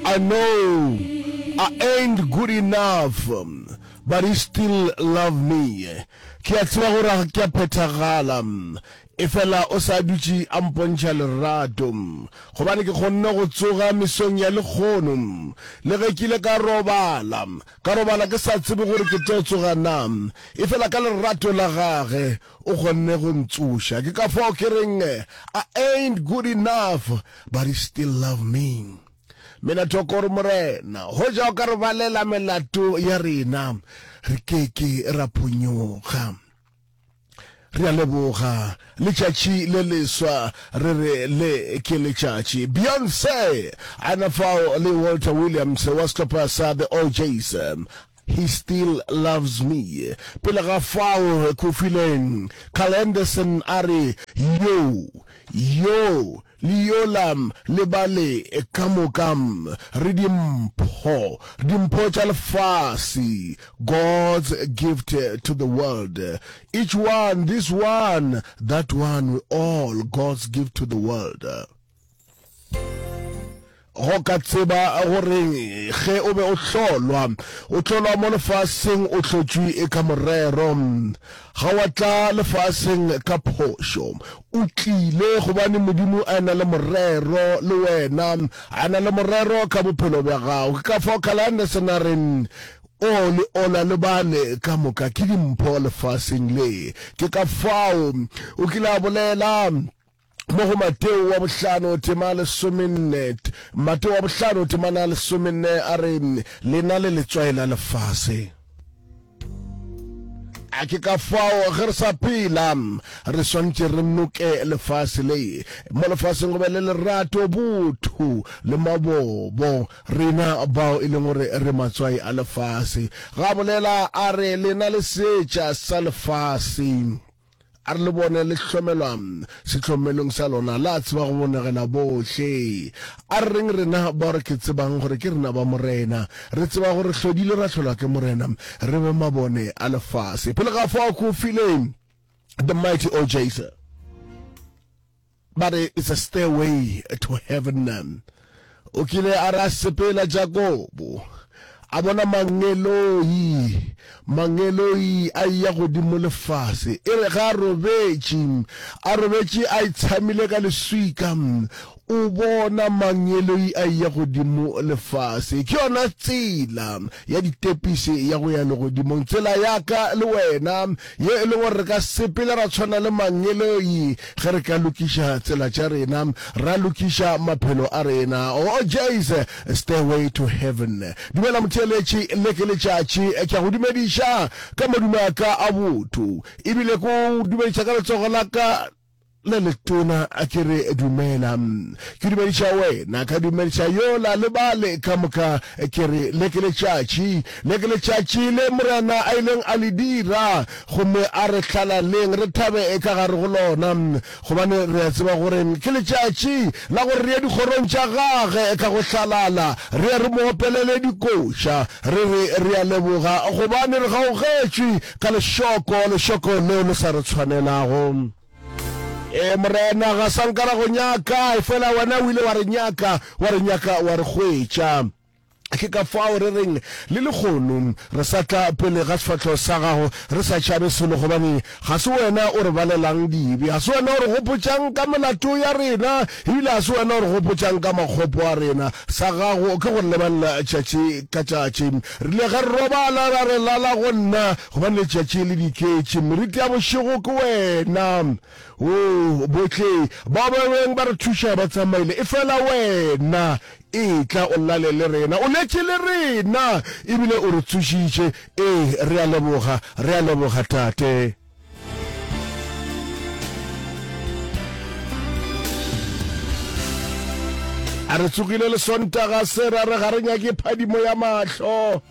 I know I ain't good enough but he still love me Ke a tseba gore ga ke a phethagala efela o sa dutše a mpontšha lerato Gobane ke kgonne go tsoga mesong ya lekgono Le ge ke ile ka robala Ka robala ke sa tsebe gore ke tlo tsoga na Efela ka lerato la gage o kgonne go ntsoša Ke ka fao ke reng I ain't good enough but he still love me Mina Tokoro Morena, hoja o ka re balela melato ya rena, re ke ke ra phonyoga. Re a leboga letšatši le leswa, re re le ke letšatši. Beyonce, a na fao le Walter Williams wa sehlopha sa The OJs, He Still Loves Me. Pele ga fao, Kofi Leng, Carl Anderson a re, Yo, yo, Le yola le ba le ka moka re dimpho, dimpho tša lefase, God's gift to the world. Each one, this one, that one, we all God's gift to the world. Go ka tseba goreng ge o be o hlolwa? O hlolwa mo lefaseng o hlotšwi e ka morero. Ga wa tla lefaseng ka phošo. O tlile gobane Modimo a na le morero le wena, a na le morero ka bophelo bja gago. Ke ka fao Kalanderson a reng, O le ola le bale ka moka ke dimpho lefaseng le. Ke ka fao o kile a bolela. mo go Mateo wa bohlano tema lesomenne Mateo wa bohlano temana lesomenne a re le na le letswai la lefase a ke ka fao ge re sa phela re swantše re noke lefase le mo lefaseng go be le lerato botho le mabobo rena bao e leng gore re matswai a lefase ga bolela a re lena le setša sa lefase A re le bone le hlomelwa sehlomelong sa lona, le a tseba go bonegela bohle. A re reng rena bao re ke tsebang gore ke rena ba Morena? Re tseba gore hlodile ra hlolwa ke Morena, re be mabone a lefase. Pele ga fao ke o file The Mighty O Jason. Ba re, It's a stairway to heaven. O kile a re a sepela Jakobo, a bona mangeloi, mangeloi a eya godimo lefase. E re ge a robetše, a robetše a itshamile ka leswika, o bona mangeloi a eya godimo lefase. Ke yona tsela ya ditepise ya go ya legodimong, tsela ya ka le wena. Ye e le gore re ka sepela ra tshwana le mangeloi ge re ka lokiša tsela tša rena, ra lokiša maphelo a rena. Oh, Jay's Stairway to Heaven. Dumela motheeletši, le ke letšatši. Ke a go dumediša ka madume a ka a botho, ebile ke o dumediša ka letsogo la ka. le letona a ke re dumela ke dumediša wena ka dumediša yola le bale ka moka ke re le ke letšatši le ke letšatši le morena a ileng a le dira gomme a re hlalaleng re thabe ka gare go lona gobane re a tseba gore ke letšatši la gore re ye dikgorong tša gage ka go hlalala re ye re mo opelele dikoša re re re a leboga gobane re gaogetšwe ka lešoko, lešoko leo le sa re tshwanelago. Ee, Morena, ga sa nka ra go nyaka, efela wena o ile wa re nyaka, wa re nyaka, wa re hwetša. Ke ka fao re reng le lehono, re sa tla pele ga sefahlogo sa gago re sa tšhabe selo, gobane ga se wena o re balelang dibe, ga se wena o re gopotšang ka melato ya rena, ebile ga se wena o re gopotšang ka makgopo a rena. Sa gago ke go re lebelela tšatši ka tšatši. Re ile ge re robala ra re lala go nna, gobane letšatši le diketše, meriti ya bošego ke wena. Oo, bohle bao ba beng ba re thuša ba tsamaile, efela wena, etla o lale le rena. O letše le rena, ebile o re tsošitše. Ee, re a leboga, re a leboga, Tate. a re tsogile le sontaga se ra re ga re nyake phadimo ya mahlo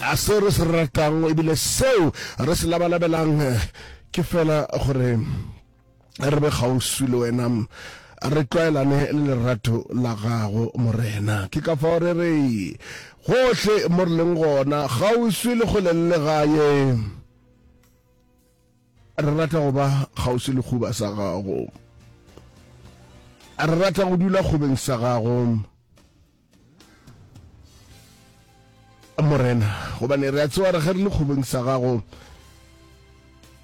a seo re se ratang ebile seo re se labalabelang ke fela gore re be kgauswi le wena, re tlwaelane le lerato la gago, Morena. Ke ka fao re re, gohle mo re leng gona, kgauswi le kgole le legae, re rata go ba kgauswi le khuba sa gago, re rata go dula kgobeng sa gago, morena gobane re a tsewa re ge re le kgobeng sa gago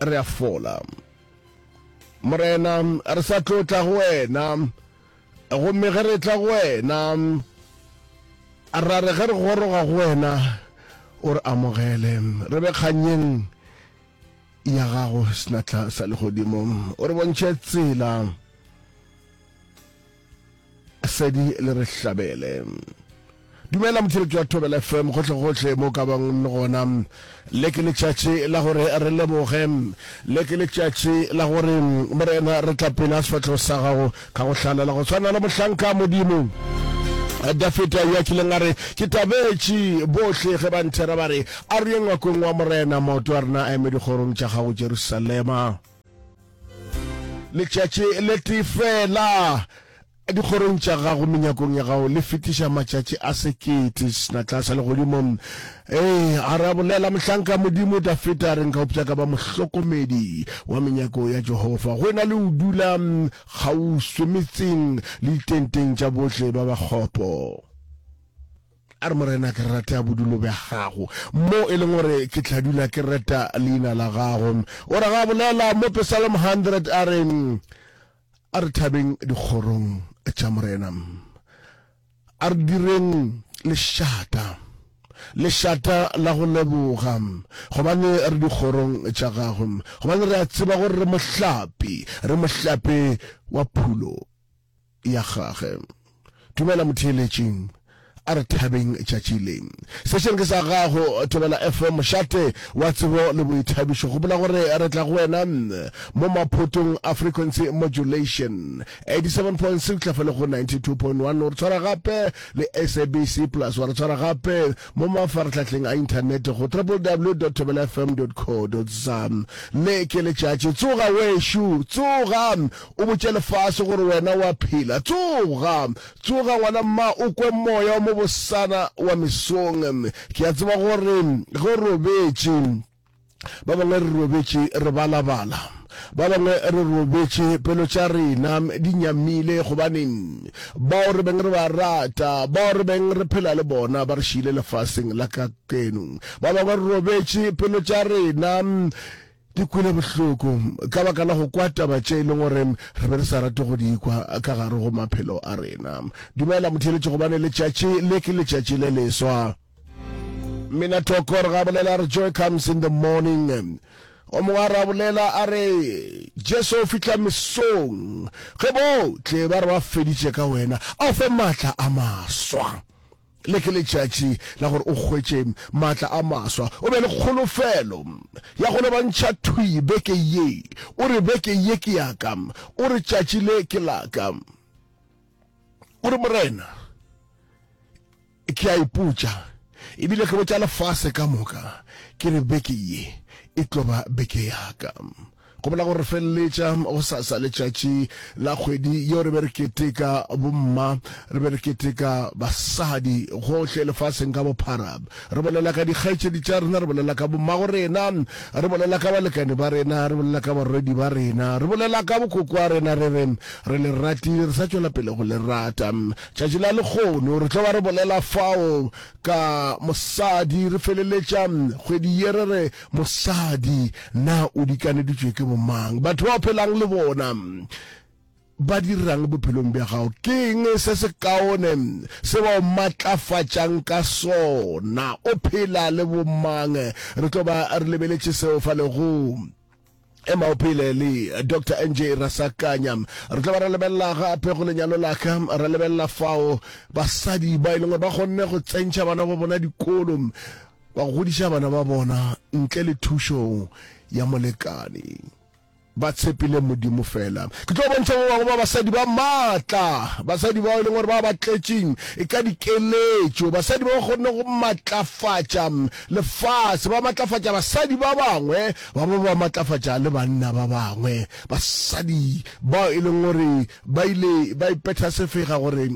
re a fola morena re sa tlo tla go wena gomme ge re tla go wena ra re ge re goroga go wena o re amogele re be kganyeng ya gago senatla sa legodimo o re bontšhe tsela Sedi le re hlabele. Dumela motšheletši wa Thobela FM gohlegohle mo ka bang le gona. Le ke letšatši la gore re leboge. Le ke letšatši la gore Morena re tla pela sefatlhego sa gago ka go hlalela go tshwana le mohlanka Modimo. Dafita yo a kileng a re ke tabetše bohle ge ba nthera ba re a re ye ngwakong wa morena maoto a rena a eme dikgorong tša gago Jerusalema. Letšatši le tee fela dikgorong tša gago menyakong ya gago le fetiša matšatši a sekete senatla sa legodimo ee a ra bolela mohlanka modimo dafeta a re nka opša ka ba mohlokomedi wa menyako ya jehova go ena le o dula kgauswi metseng le ditenteng tša bohle ba bakgopo A re, Morena, ke rata bodulo bja Gago, mo e leng gore ke tla dula ke reta Leina la Gago. O ra ge a bolela mo Pesalmo 100, a re, A re thabeng dikgorong tša Morena. A re direng lešata, lešata la go leboga, gobane re dikgorong tša Gagwe, gobane re a tseba gore re mohlapi, re mohlapi wa phulo. ya gage. Dumela motheeletši. A re thabeng tšatši le. Sešeng ke sa gago, Thobela FM, mošate wa tsebo le boithabišo. Gopola gore re tla go wena mo maphotong a frequency modulation, 87.6 tlhafa le go 92.1. O re tshwara gape le SABC Plus. Wa re tshwara gape mo mafaratlhatlheng a inthanete go www thobelafm co za. Le ke letšatši. Tsoga wešo, tsoga o botše lefase gore wena o a phela. Tsoga! Tsoga, ngwana mma, o kwe moya wa mo bosana wa mesong. Ke a tseba gore ge o robetše, ba bangwe re robetše re balabala, ba bangwe re robetše pelo tša rena di nyamile, gobane bao re beng re ba rata, bao re beng re phela le bona ba re šiile lefaseng la kakeno. Ba bangwe re robetše pelo tša rena Ke kwele bohloko ka baka la go kwa taba tše e leng gore re be re sa rate go di kwa ka gare go maphelo a rena. Dumela motheeletši gobane letšatši le ke letšatši le leswa. Mmina Tokor ga bolela re joy comes in the morning. O mongwe a ra bolela a re Jesu o fihla mesong ge bohle ba re ba feditše ka wena, a o fe maatla a maswa. Le ke letšatši la gore o hwetše maatla a maswa. O be le kholofelo ya go lebantšha thwi beke ye. O re, Beke ye ke ya ka. O re, Tšatši le ke la ka. O re, Morena, ke a ipotša, ebile ke botša lefase ka moka, ke re, Beke ye e tlo ba beke ya ka. Go bolela gore re feleletša go sa sa letšatši la kgwedi yeo re be re keteka bomma, re be re keteka basadi gohle lefaseng ka bophara. Re bolela ka dikgaetšedi tša rena, re bolela ka bommago rena, re bolela ka balekane ba rena, re bolela ka barwedi ba rena, re bolela ka bokokwa rena, re re, re le ratile, re sa tšwela pele go le rata. Tšatši la lekgono re tlo ba re bolela fao ka mosadi, re feleletša kgwedi ye re re Mosadi, Na o dikaneditšwe ke bomang? Batho ba o phelang le bona ba dirang bophelong bja gago? Ke eng se se kaone se ba o matlafatšang ka sona? O phela le bomang? Re tlo ba re lebeletše seo fa legong. ema o phele le dr nj rasakanya re tla ba re lebelela gape go lenyalo laka re lebelela fao basadi ba e leng gore ba kgonne go tsentšha bana ba bona dikolo ba godiša bana ba bona ntle le thušo ya molekane ba tshepile modimo fela ke tlo bontšha ba bangwe ba basadi ba maatla basadi bao e leng gore ba ba tletšeng e ka dikeletšo basadi ba ba kgonne go matlafatša lefase ba matlafatša basadi ba bangwe Ba be ba matlafatša le banna ba bangwe. Basadi bao e leng gore ba ile ba ipetha sefega gore,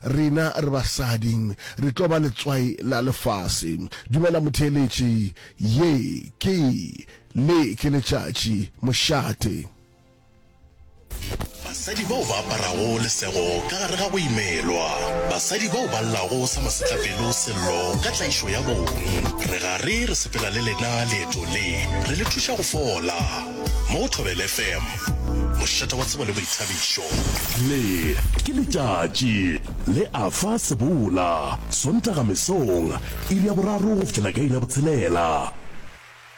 Rena re basadi re tlo ba letswai la lefase. Dumela motheeletši, ye ke le ke letšatši, mošate. Basadi bao ba aparago lesego ka gare ga go imelwa. Basadi bao ba llago sa masetlapelo sello ka tlaišo ya bong. Re gare re sepela le lena leeto le, re le thuša go fola. Mo go Thobela FM, mošate wa tsebo le boithabišo. Le ke letšatši le a fa sebola, Sontaga mesong, iri ya boraro go fihlela ka iri ya botshelela.